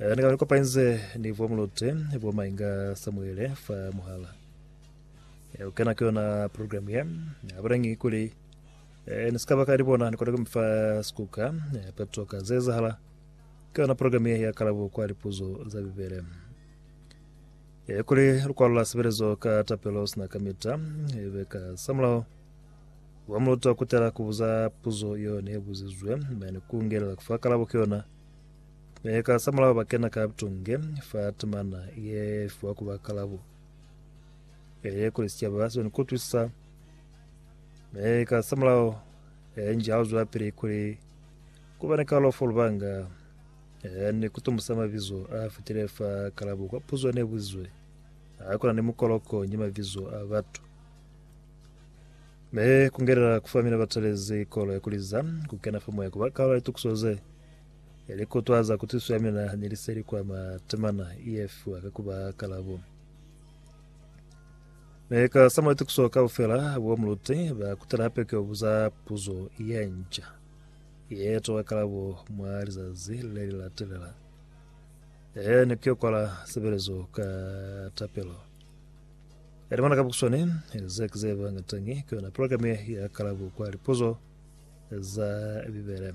Eh, ni ka kopanyize ni bo Mulote, bo Mainga Samuele fa muhala. Eh, u kena ke yona program ye. Ha ba ngi kuli eh, ni ska ba ka di bona ni kona kumfa skuka eh, pa toka ze zahala. Ke yona program ye ya kalabo kwa lipuzo za Bibele. Eh, kuli lukwalo la sebelezo ka tapelo sina kamita eh, be ka samulao wa muloto wa kutela kubuza puzo yone buzizwe mane kungelela kufa kalabo ke yona Mi ka sa mulao ba kena ka butunge fa temana ye fiwa ku ba kalabo ye kuli sicaba sibeni kutwisa. Mi ka sa mulao ye nji ha lu zwelapili kuli ku ba ni kalalo fa lubanga ye ni kutumbusa mabizo a fitile fa kalabo kwa puzo ne buzizwe ha kuna ni mukoloko ni mabizo a batu. Me kungelela kufamina batalezi kolo ya kuliza kukena fa moya kuba kalalo ya litukiso ze. Ya li kutwaza ku tuso ya mina ni li seli kwa ma temana ye fiwa ka kuba kalabo. Ne ka sama tukuso ka ufela bo muluti ba kutela hape ke obuza puzo ye nca. Ye tola kalabo mwa lizazi le li latelela. Ee ne ke kwala sebelezo ka tapelo. Eri mwana ka bukuswani ze ke ze bangatangi ke yona programe ya kalabo kwa lipuzo za Bibele.